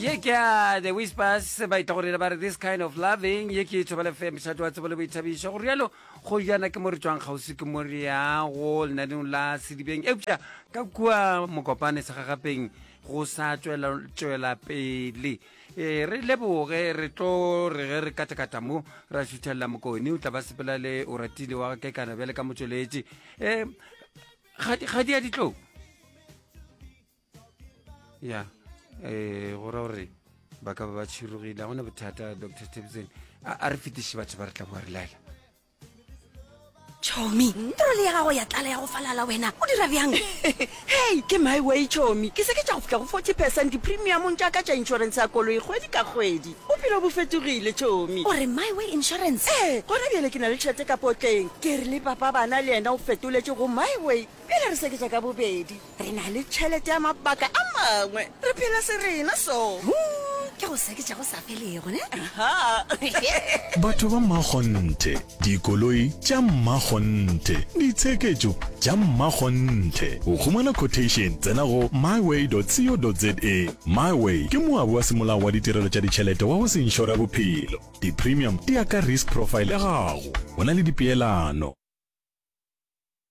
ye ke ya the whispers ba itla gore ba re this kind of loving ye ke e thobele fe mošate wa tsebo le boithabišo go rialo go jana ke mo re tswang kgauswi ke mo re yago lenaneng la sedibeng eupša ka kua mokopane segagapeng go sa tswela pele e re leboge re tlo re ge re katakata mo ra šuthelela mokone o tla ba sepela le o ratile wa ke kana bjale ka motsweletši um ga di a ditlong ya um go ra gore ba ka ba ba tšhirogile ga gona bothata dr tebsen a re fetiše batho ba re tla boa re laela chomi toro le ya gago ya tlala ya go falala wena o dira bjang hei ke my way chomi ke se ke tša go fitlha go forty percent di-premiumong tša ka tša insurance ya koloi kgwedi ka kgwedi bophelo bo fetogile chomi gore my way insurance ee gona bjale ke na le tšhete ka potleng ke re le papa bana le yena o fetoletše go my way pele re seketša ka bobedi Re na le tšhelete ya mabaka a mangwe. Re phela serena so. Hung, ke go seketša go sa felego, ne? Aha. Batho ba mmakgonthe, dikoloi tša mmakgonthe, ditsheketšo tša mmakgonthe. Go humana quotation, tsena go myway.co.za. Myway ke moabi wa semolao wa ditirelo tša ditšhelete wa go se inšora bophelo. Di-premium di ya ka risk profile ya gago. Go na le dipeelano.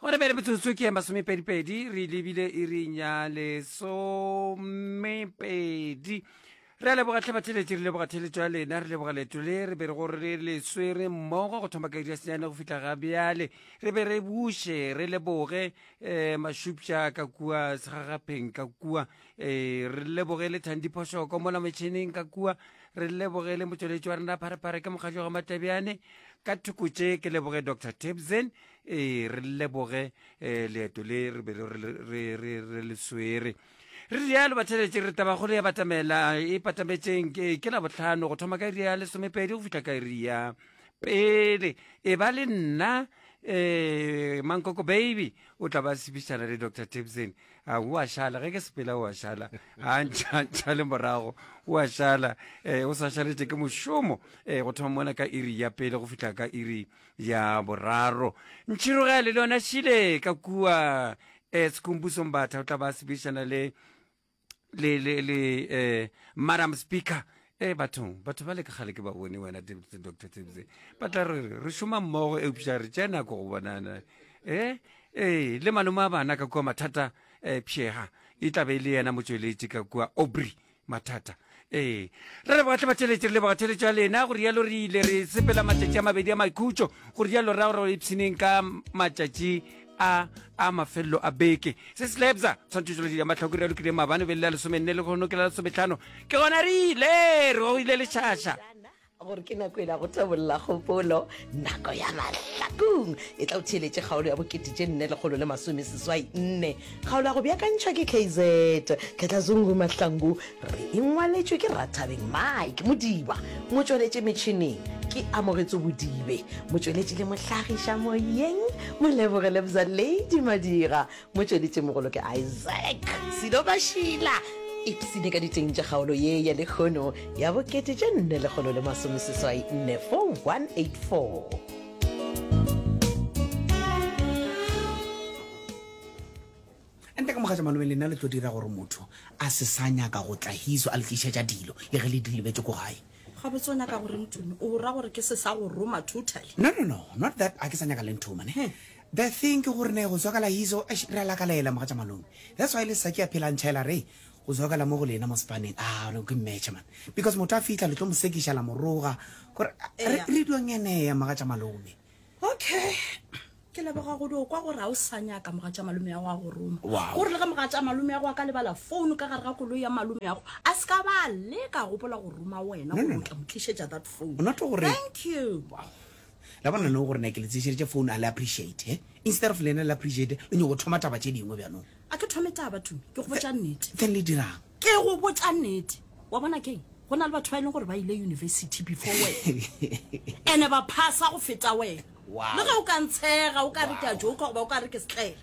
gore bele metsotso ke ya masomepedipedi re lebile e re nya lesomepedi re a leboga tlhabatheletše re leboga theletšo ya lena re leboga leto le re be re gore re le swere mmogo go thoma ka iri ya senyane go fitlha ga bjale re be re buše re leboge um eh, mashupša ka kua segagapheng ka kua ee re lebogele thandi phošoko mola metšhineng ka kua re lebogele motšweletši wa rena pharephare ke mokgatlo ga matebjane ka thoko tše ke leboge dr tebsen ee re leboge um leeto le re be re le swere re rialo batheletše re tabagolo ya batamela e patametšeng ke la botlhano go thoma ka iri ya lesomepedi go fitlha ka iri ya pele e ba le nna um mankoko baby o tla ba sebišana le dr tebsen a o a šala ge ke sepela o a šala a ntšhantšha le morago o a šala um o sa šaletse ke mošomo um go thoma mona ka iri ya pele go fitlha ka iri ya boraro ntšhirogele le yona šile ka kua um sekhumbusong batha o tla ba sebišana le le le le um madam speaker ee bathong batho ba le ka gale ke ba bone wena doctor tsebse ba tla re re šoma mmogo eupša re tša nako go bonana ee ee le malome a bana ka kua mathata um pšega e tlabe e le yena motsweletše ka kua obry mathata ee re le bogatle batheletše re le bogatheletše ya lena go rialo re ile re sepela matšatši a mabedi a maikhutšo go rialo ra gore ipshineng ka matšatši a a mafelelo a beke se se lebza tshwantshiso le matlhoko re lokile mabane be le la lesome nne le go nokela lesometlhano ke gona re ile re go ile lešhaša gore ke nako ela go tabolola kgopolo nako ya mahlakong e tla o theeletše kgaolo ya bokete tše nne lekgolo le masome seswai nne kgaolo ya go beakantšhwa ke kz khetlazungu mahlangu Re e ngwaletšwe ke Rathabeng Mike Modiba, motšweletši metšhineng ke Amogetso Bodibe, motšweletši le mohlagiša moyeng Moleboge Lebza Lady Madira, motšweletšimogolo ke Isaac Silo Mashila. Ipsine ka diteng tša kgaolo ye ya lekgono ya bokete tše nne lekgolo le masomeseswai nne 4184. Ente ka mogatša malome, lena le tlo dira gore motho a se sa nyaka go tla hiso a le tlišetša dilo le ge le di lebetše ko gae. Gabotse o nyaka go reng Tumi? O ra gore ke se sa go roma totally? No, no, no, not that ga ke sa nyaka le nthoma ne. The thing ke gore ne go zwakala hiso, eish re a lakalela mogatša malome. That's why le sa ke a phela ntšha ela re go zwakala mo go lena mo sepaneng. Aa, no ke mmetšha man. Because motho a fihla le tlo mo sekiša la mo roga gore re, re dio ngenea mogatša malome. okay ke leboga godi o kwa gore ga o sa nyaka moga tša malome ya go a go roma o re le ge moga tša malome ya go a ka lebala founu ka gare ga koloi ya malome ya go a se ka ba le ka gopola go roma wena gore o tla mo tlišetša that phone thank you la bona no gore ne ke le tseseditše phone a le appreciate eh? instead of lena le appreciate le nyoko thoma taba tše dingwe bjanong a ke thome taba tumi ke go botša nnete then le dirang ke go botša nnete wa bona keng go na le batho ba e leng gore ba ile university before wena ene ba phasa go feta wena le ge o ka ntshega o ka re ke a joka goba o ka re ke setlele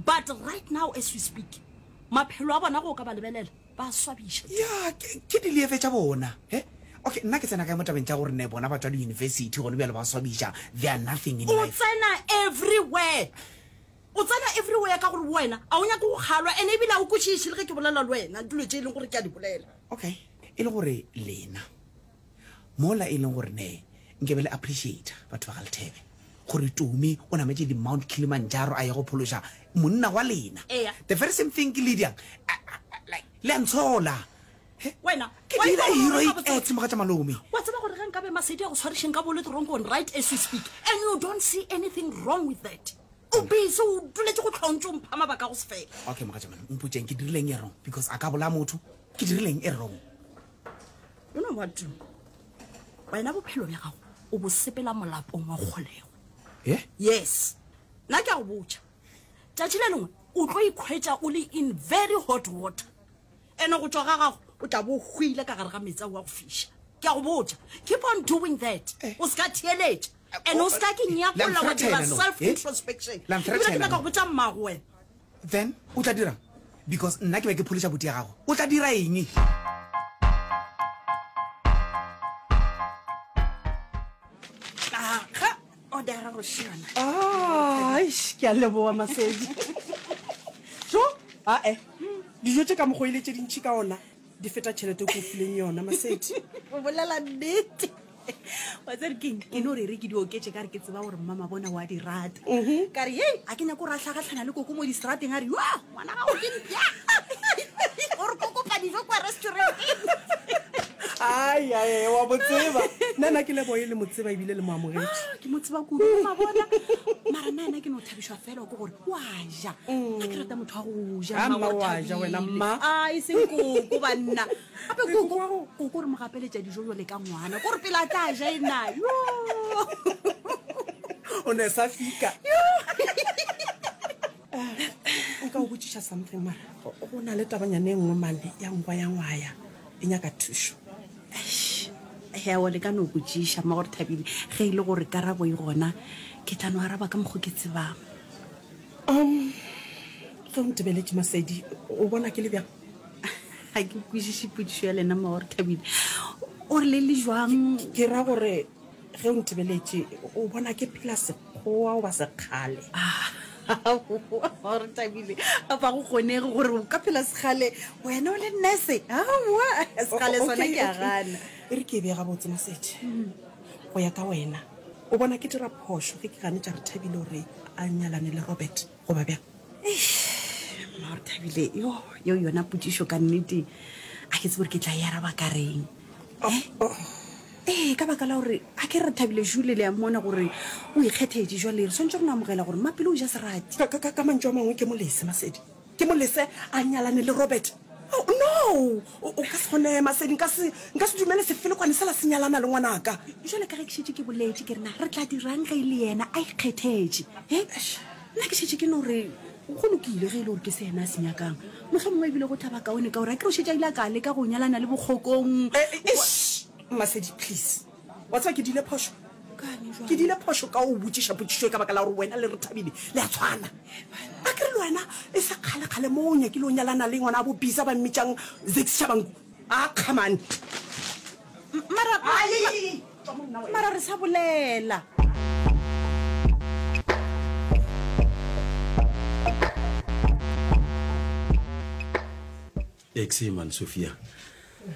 but right now as we speak maphelo a bona go ka ba lebelela ba swabiša ya ke dilieve tša bona e okay nna ke tsena kae mo tabeng tša gore ne bona batho ba di-university gone bjalo ba swabiša they are nothing in life o tsena everywhere O tsena everywhere ka gore wena a o nyake go kgalwa and ebile a o kwešiše le ge ke bolela le wena dilo tše e leng gore ke a di bolela. Okay, e le gore lena mola e leng gore ne nke be le appreciator batho ba ga Lethebe gore Tumi o nametše di Mount Kilimanjaro a ye go phološa monna wa lena. Eya. The very same thing ke Lydia. Like, le a ntshola. wena ke dira heroic act moga tša malome wa tseba gore ge nka be masedi a go tshwarešeng ka bole toronkong right as we speak and you don't see anything wrong with that o busy o duletse go tlhontse o mpha mabaka go se fela okay moga tša malome o mpotseng ke dirileng e wrong because a ka bola motho ke dirileng e wrong you know what wena bophelo bja gago o bo sepela molapong wa kgolego eh? yes nna ke a go botša tšatši le lengwe o tlo ikgwetša o le in very hot water Ene go tšwa ga gago o tla bo hwile ka gare ga metsi a wa go fiša. Ke a go botša. Keep on doing that. Eh. O se ka theeletša. Ene o se ka ke nyakolla wa dira self eh? introspection. Ebile ke nyaka go botša mmago wena. Then o tla dirang? Because nna ke be ke pholiša boti ya gago. O tla dira eng? odara go šiona ah, ke a leboa masedi so ae dijo tše ka mokgo ile tše dintšhi ka ona di feta tšhelete ko fileng yona masedi o bolela nnete wa tsere keng ke no rere ke di oketse ka re ke tseba gore mmama bona wa di rata mhm. ka re hei a ke nyako ra tlhagatlhana le koko mo diserateng a re ngwana gago ke mpya o re ko kopa dijo kwa restauranteng ai ae wa mo tseba nna na ke leboe le mo tseba ebile le mo amogetše ah, ke mo tseba kudu ma bona mara nna ena ke no thabišwa fela ke gore wa ja mm. a ke rata motho wa go ja ah, mma wa ja wena mma a ah, e seng koko ba nna gape koko koko re mo gapeletša dijo jale ka ngwana ko re pele a tla ja e na yo o ne sa fika nka o botsiša something mara go na le tabanyane e nngwe mane ya nkwa ya ngwaya e nyaka thušo hewo le ka no botsiša mma gore thabile ge e le gore karabo e gona ke tla no araba ka mokgo ke tsebang um ge o ntebeletše masedi o bona ke le bjang ga ke kwešiše potsišo ya lena mma gore thabile o re le le jwang ke ra gore ge o ntebeletše o bona ke phela Go wa goba sekgale. Aowa re thabile a ba go kgonege gore o ka phela sekgale wena o le nurse aowa sekgale sona ke a gana e re ke e bee gabotse mosethe go ya ka wena o bona ke dira phošo ge ke ganetša re thabile gore a nyalane le robert goba bjang mmago thabile yo yo yona potsišo ka nnete a ke tse gore ke tla e araba ka reng eh? ee ka baka la gore a ke re thabile jule le ya mmona gore o ikgethetse jwa lere swantse go no amogela gore mmapelo o ja serati ka mantso a mangwe ke molese masedi ke molese a nyalane le robert Oh, no o ka se gone masedi nka se nka se dumele sefelekwane se la se nyalana le ngwanaka jale ka ge ke šetše ke boletše ke rena re tla dirang ge e le yena a ikgethetše e eh? nna ke šetše ke no re go lokile ge e le gore ke se yena a se nyakang motlho mongwe ebile go thaba kaone ka gore a ke re o šetše a ile a ka leka go nyalana le bokgokong eh, eh, masedi please Wa tseba ke dile phošo? Ke dile phošo ka o botšiša potšišo e ka baka la gore wena le re Thabile le a tshwana. A ke re le wena e se kgale-kgale mo o nyakile o nyalana le ngwana a bo Bisa ba mmitšang Zakes Shabangu? A kga mane. Mara, mara re sa bolela. Exi, man Sofia.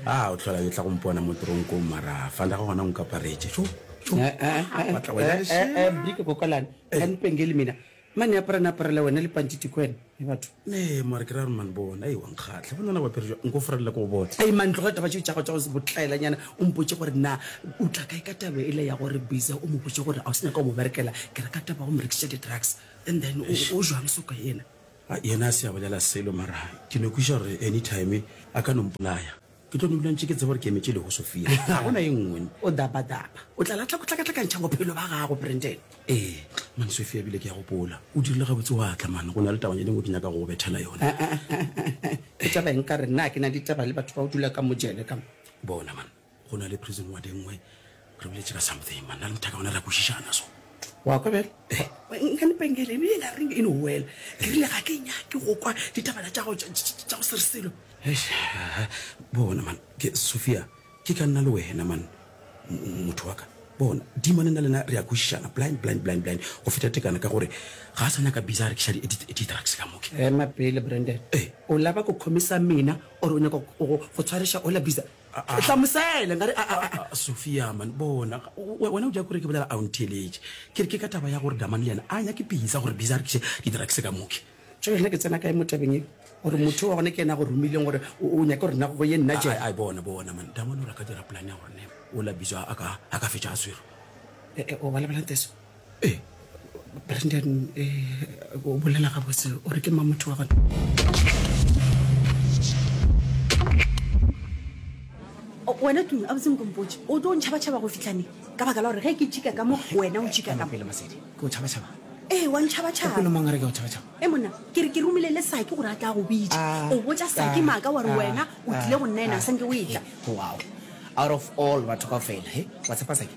A o tlhola yo tla go mpona mo tronkong mara fanda go gona o nkaparetše. Tšo, tšo. Eh, eh, eh, eh, Batla wena eh, eh, lešela. eh, Brika kokalane. Ka nipengeli mina. Mane apara na aparela wena le panti tiko wena. E batho. Ne, mare ke ra gore man bona, ei wa nkgatlha. Bona na bapere jwa, nko forelela ko go bona. Ei man tloga taba tšeo tša go tša go se botlaelanyana o mpotše gore na o tla kae ka taba ele ya gore Biza o mo botše gore a o se nyaka go mo berekela ke re ka taba ya go mo rekiša di-drugs and then o o jwang soka yena. A yena a se a bolela selo, mara ke no kweša gore anytime a ka no mpolaya. Ke tlo no dula ntše ke tseba gore ke emetše leho Sophia. Ga go na e nngwe. O daba-daba. O tla latlha go tlakatlakantšha bophelo ba gago, Brandon. Ee, man Sophia, ebile ke a gopola. O dirile gabotse wa tla, man. Go na le tabanyana e nngwe ke nyaka go go bethela yona. Ke taba eng ka re na ke na le ditaba le batho ba go dula ka mo jele ka mo? Bona, man. go na le prison wa dengwe re biletše ka something man na le mothaka gona re a kwešišana so wa kwa bjale nka lepengele ebile ka reng eno wela ke rile ga ke nyake go kwa ditabana tša go tša go serselo bona man ke sophia ke ka nna le wena man motho wa ka bona dimane na lena re a kwešišana blind blind blind blind go feta tekana ka gore ga a sa nyaka bisa re ke šadi di-drugs ka moke ema pele brandon o laba go khomisa mina ore o nyaka go tshwareša ola bisa hlamusele nka re a- a- a- sofia man bona we- wena o ja kore ke bolela a o ntheeletše ke re ke ka taba ya gore damane le yena a nyake bisa gore bisa a rekiše di-drugs ka moke jale nna ke tsena kae mo tabeng e gore motho wa gone ke ena go romileng gore o o nyake gore nna go ye nna je a bona bona man damane o ra ka dira polane ya gore ne o la bisa a ka a ka fetša a swero o balabelang teso e eh, brandon um eh, o bolela gabotse o re ke ma motho wa gona wena tumi a botseng kompotse o tlo ntšhabatšhaba go fitlhane ka baka la gore ge ke tšhika ka mo wena o tšhika kapele masedi ke o tšhabatšhaba ee wa ntšhabatšhabapele mang re ke o tšhabatšhaba e eh, monna ke re ke romile le sake gore a tla go bitsa ah, o botsa sake ah, maaka wa re ah, wena o tlile go nna ena a sanke o etla eh, wow out of all batho ka fela he wa tshepa sake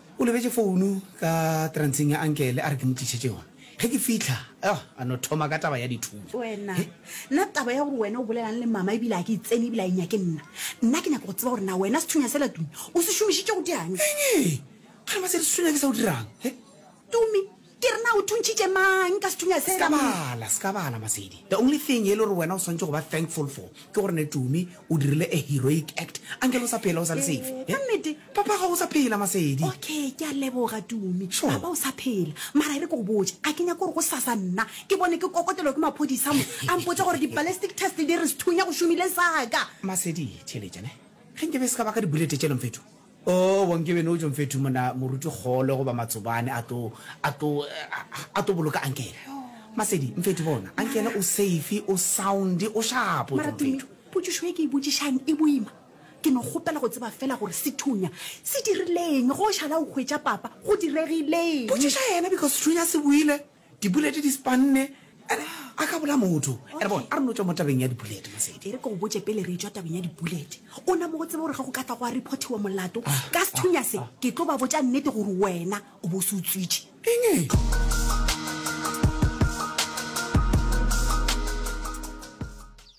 O lebetše founu ka transeng ya ankele a re ke mo tlišetše yona. Ge ke fihla, oh, a no thoma ka taba ya dithuto. Wena, He. nna taba ya gore wena o bolelang le mama ebile a ke e tsene ebile a e nyake nna. Nna ke nyaka go tseba gore na wena sethunya sela Tumi o se šomišitše go dianya. Eng ee? Ga re ba se re sethunya ke sa o dirang. He. Tumi, Ke re na o thuntšhitše mang ka sethunya sela? Ska bala, ska bala Masedi. The only thing e le gore wena o swantše go ba thankful for ke gore ne Tumi o dirile a heroic act. Uncle o sa phela o sa le safe. Ka nnete? Papa gago o sa phela Masedi. Okay, ke a leboga Tumi. Sure. Papa o sa phela. Mara e re ke go botše, a ke nyake gore gosasa nna ke bone ke kokotelwa ke maphodisa mo a mpotša gore di-ballistic test di re sethunya go šomile saka. Masedi, theeletša ne. Ge nke be se ka ba ka di-bullet tše lomfethu. Oo, bonkebe no Jomfethu mona moruti kgole goba matsobane a tlo, a tlo, a tlo boloka ankele. Masedi, Mfethu bona, ankele o safe, o sound, o shapo, Mara Tumi, Jomfethu. potšišo ye ke e botšišang e boima. Ke no kgopela go tseba fela gore sethunya se dirileng, ge o šala o hwetša papa, go diregileng? Potšiša yena because sethunya se buile. Dipuleti di spanne, ere a ka bola motho. Ere bona, a re no tšwa mo tabeng ya dipuleti, Masedi. Ere ke go botše pele re tšwa tabeng ya dipuleti. O na mo go tseba gore ge go ka tla go a reportiwa molato, ah, ka sethunya se, ah, ke tlo ba botša nnete gore wena o bo se utswitše. Enge?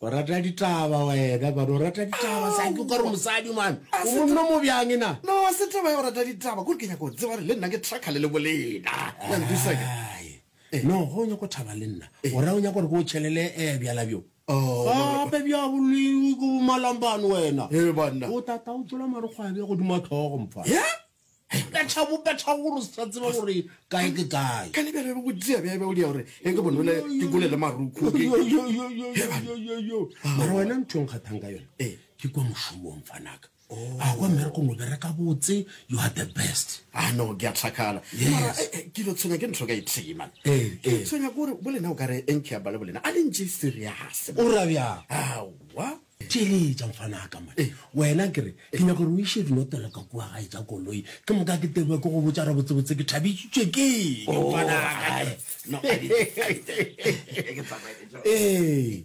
O rata ditaba wena man, o rata ditaba sa ke kore mosadi man. O monno mo bjang na? No, a se taba ya go rata ditaba, kore ke nyaka go tseba gore le nna ke trakha le le bolena. Ya ntwisake. Eh. No, go nyako thaba le nna. Eh. O ra o nyako gore ke o chelele eh bjala bjo. Oh. Gape bja boleng go malambane wena. Eh banna. O tata o tsola marokgwabe go dima tlhogo mfa. Yeah. ka tšhabo ka tšhabo gore se tla tseba gore kae ke kae ka lebele go tsia bebe o dia gore e ke bonole ke kole le maruku mara wena ntho nga thang ka yone eh. ke kwa moshomong fanaka oh. a kwa mmereko mo bereka botse you are the best a ah, no ke a tlhakala yes eh, eh, ke lo tshwenya ke ntho ka ithee man eh ke tshwenya gore bolena o ka re enkhe ya bale bolena a le ntse serious o rabya awa theeletša mfana a ka mone eh. wena ke re ke nyaka gore o iše dinotelo ka kua gae tša koloi ke moka ke tebwa ke go botsa re botsebotse ke thabisitswe ke oh, ee